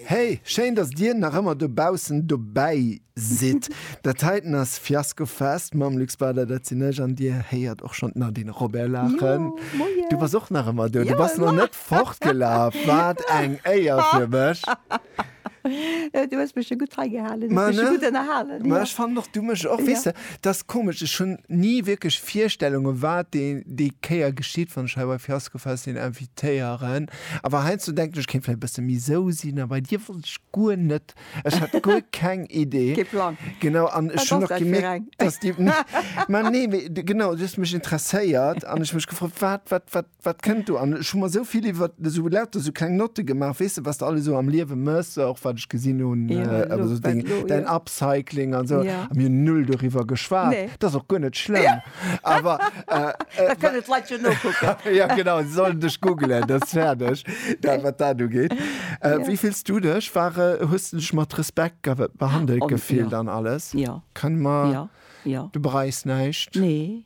Hey, schéin dass dir nach ëmmer dobaussen dobäi sidd. Dat heiten ass Fiasco Fest mam Luc Spader, dat sinn ech, an dir héiert och schonn d'Nadine Robert laachen. Du bass och nach ëmmer do, du bass nach net fortgelaf, wat eng Éier fir mech. Du hues mech jo gutt hei gehalen, hues mech jo gutt ënnerhalen. Ma ech fannen och, du mech och. Weess de, et ass komesch, ech hunn ni wierklech Virstellunge wat déi Kéier geschitt, wann ech hei bei Fiasco Fest een invitéieren. Awer heiansdo denken ech, ech kéint vläicht e bësse méi sou sinn a bei dir wollt ech guer net. Ech hat guer keng Idee. Kee Plang. Genau, an ech hunn och gemierkt, dass déi, ma nee, mee genau, du hues mech interesséiert an ech hu mech gefrot, wat, wat, wat. Wat kënnt do? An ech hu mer esou vill iwwer esou lauter esou kleng Notte gemaach, weess de, wat s de alles esou am Liewe méchs, och wat ech gesinn hunn, Jo, elo, also esou wat deng, elo, däin jo. Upcycling an esou. Ja. A mir hunn null doriwwer geschwat. Nee. Dat ass och guer net schlëmm. Awer, äh, Da äh, kënnen d'Leit jo nokucken. ja, genau, se sollen dech googelen, dat ass fäerdeg, da, wat dat ugeet. Äh, Ja. wéi fills du dech? War, äh, hues de dech mat Respekt ge behandelt An, gefillt ja. an alles? Ja. Kann mer, Ja, ja. du bereis näischt? Nee,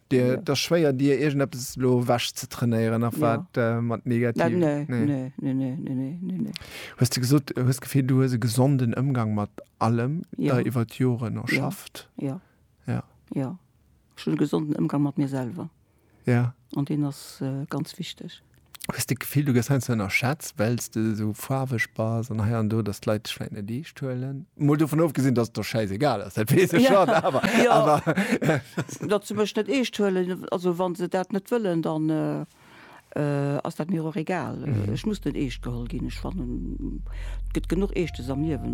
Et ass schwéier dir iergendeppes elo ewech ze trainéieren nach wat mat negativ. Hues de gesot hues d'Gefill du hues e gesonden Ëmgang mat allem der iwwer d'Joren erschafft? Jo ech hunn e gesonden Ëmgang mat mir selwer an deen ass ganz wichteg. Hues de d'Gefill, du gëss heiansdo ënnerschätzt, well s de esou faarweg bass an hei an do, datt d'Leit dech vläicht net eescht huelen? Mol dovun ofgesinn, datt et der schäisegal ass, dat weess ech schonn, awer, awer. Jo, datt se mech net eescht huelen, also wa se dat net wëllen, dann ass dat mir och egal. Ech muss net eescht geholl ginn. Ech fannen, et gëtt genuch Eeschtes am Liewen.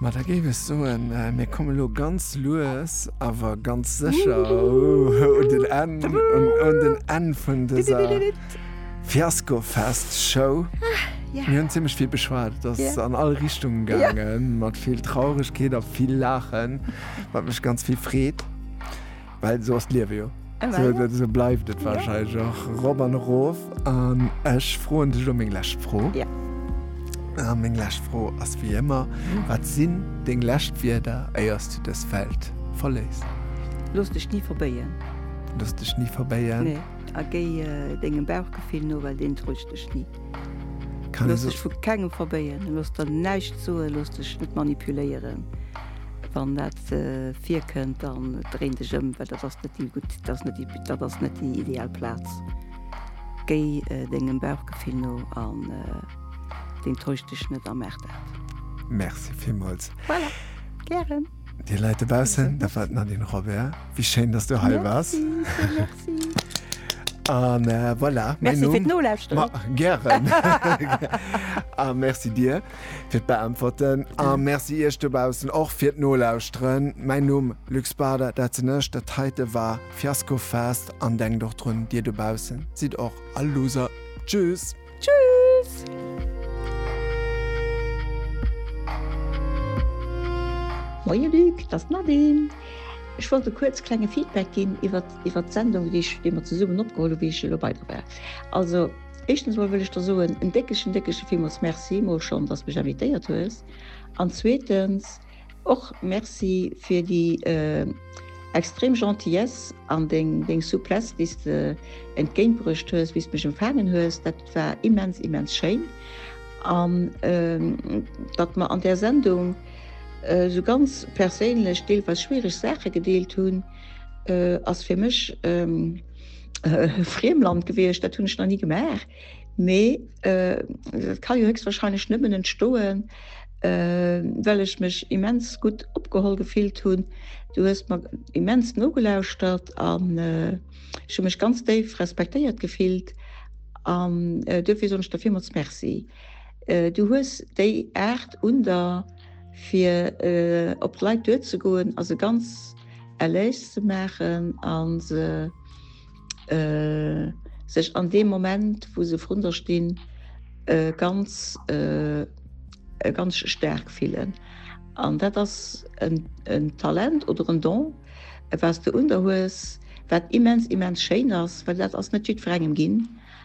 Ma da géif ech soen, mir komme lo ganz lues awer ganz sécher un den Enn, un den Enn vun dëser Fiaskofest-Show. Mir hunn zimmlech vill beschwat, et ass an all Richtunge gaangen, mat vill Trauregkeet a vill Laachen, wat mech ganz vill freet. Well esou ass d'Liewe jo. Esou bleift et warscheinlech och erop an erof. An ech froen dech elo meng lescht Fro. A meng lescht Fro ass wéi ëmmer, Wat sinn deng lescht Wierder, éier s du dës Welt verléiss? Looss dech ni verbéien. Looss dech ni verbéien. Nee. A géi dengem Bauchgefill no, well deen täuscht dech ni. Looss dech vu kengem verbéien. Looss der näischt soen. Looss dech net manipuléieren, wann dat net virkënnt, dann dréin dech ëm, well dat ass net déi gutt, dat ass net déi, dat ass net déi ideal Plaz. Géi dengem Bauchgefill no an deen täuscht dech net a maach dat. Merci villmools. Voilà, gären. Dir Leit dobaussen, dat war d'Nadine Robert. Wéi schéin, dass du hei waars. Merci, vill Merci. An voilà, mäin Numm. Merci fir d'Nolauschteren. Ma gären. A merci dir. Fir d'Beäntwerten a Merci iech dobaussen och fir d'Nolauschteren. Mäin Numm, Luc Bader, dat sinn ech. Dat heite war Fiasko Fest an denkt och drun, dir dobaussen sidd och all Loser. Tschüss! Tschüss! Moie Luc, dat ass d'Nadine. Ech wollt e kuerz klenge Feedback ginn iwwert d'Sendung, déi mer zesummen opgeholl hu wéi ech elo bei der war. Éischtens mol wëll ech der soen en déckegen, déckege villmools Merci mol schonn, dass mech invitéiert hues. An zweetens och Merci fir déi extrem Gentillesse an deng, deng Souplesse, déi s de entgéint bruecht hues, wéi s de mech empfaangen hues. Dat war immens, immens schéin. An datt mer an där Sendung esou ganz perséinlech, deelweis schwiereg Saache gedeelt hunn, ass fir mech, Friemland gewiescht, dat hunn ech nach nie gemaach. Mee äh, kann jo höchstwahrscheinlich nëmmen entstoen, äh, well ech mech immens gut opgeholl gefillt hunn. Du hues mat immens nogelauschtert an äh, ech hun mech ganz déif respektéiert gefillt an äh, dofir sonch der Firmals Merci. Äh, du hues déi Art un der fir äh, op d'Leit duerzegoen as e ganz Erléis ze maachen a se sech an deem Moment, wou se vrunter stinn, ganz staark fillen. An dat ass en Talent oder en Don, wat s de un der hues, wat immens, immens schéin ass, well dat ass net jiddwerengem ginn.